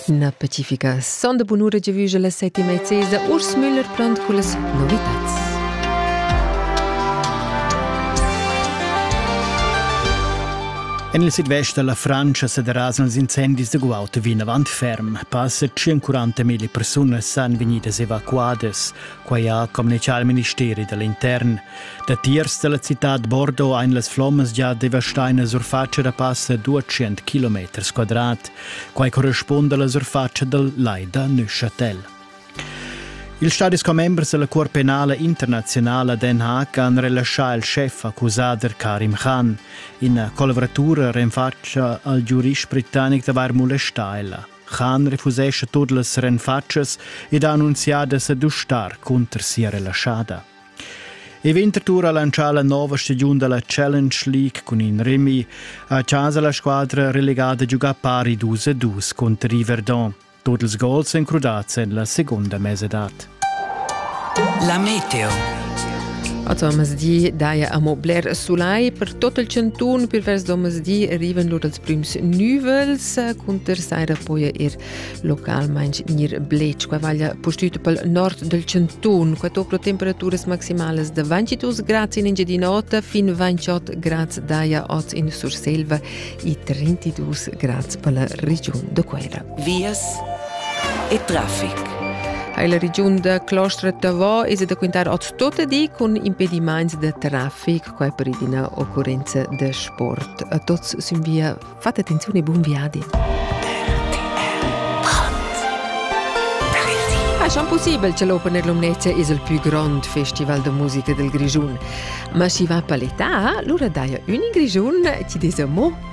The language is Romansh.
Na pacifica sonda bunura giavüscha la settima e sesa Urs Müller plant cullas novitads. En il sidvest da la Francia sa derasan ils incendis da guaud vinavant ferm. Passa 140.000 persunas san vegnidas evacuadas. Quai ha communitgà il ministeri da l'intern. Datiers da la citad Bordeaux ein las flommas già devastaina surfatscha da passa 200 km quadrat. Quai correspunda alla surfatscha dal Lai da Neuchâtel. Ils stadis commembers della Cuor penale internazionale Den Haag han relascià il chef accusader Karim Khan. Ina collaboratura renfatscha al giurist britannic d'avair molestà ella. Khan refusescha tut las renfatschas ed ha annunzià da sa dustar cunter sia relaschada. E Winterthur ha lancià la nova stagiun da la Challenge League cun in Remi. A casa la squadra relegada giuga pari 2 a 2 contro i Verdun. Tut ils gols èn crudads en la segunda mesadad. La meteo. Oz omasdi daja amo bler sulai per tot il chantun. Per vers d'omasdi arrivan lur als prüms nüvels cunter saira poja ir localmaing gnir blech. Qua vaglia pustüt pel nord del chantun. Qua tocro temperaturas maximales de 22 grads in Engiadin'Ota fin 28 grads daja oz in Surselva e 32 grads per la regiun de Quera. vias e traffic. Hai la regiun da Clostra Tavò es da quintar a tutte di cun impediments da traffic qua per ina occurenza da sport. A tots sin via fate attenzione e buon viadi. È schon possibile che l'Open Air Lumnezia è il più grande festival de musica del Grigiun. Ma si va per l'età, allora dai un in Grigiun ti des un mot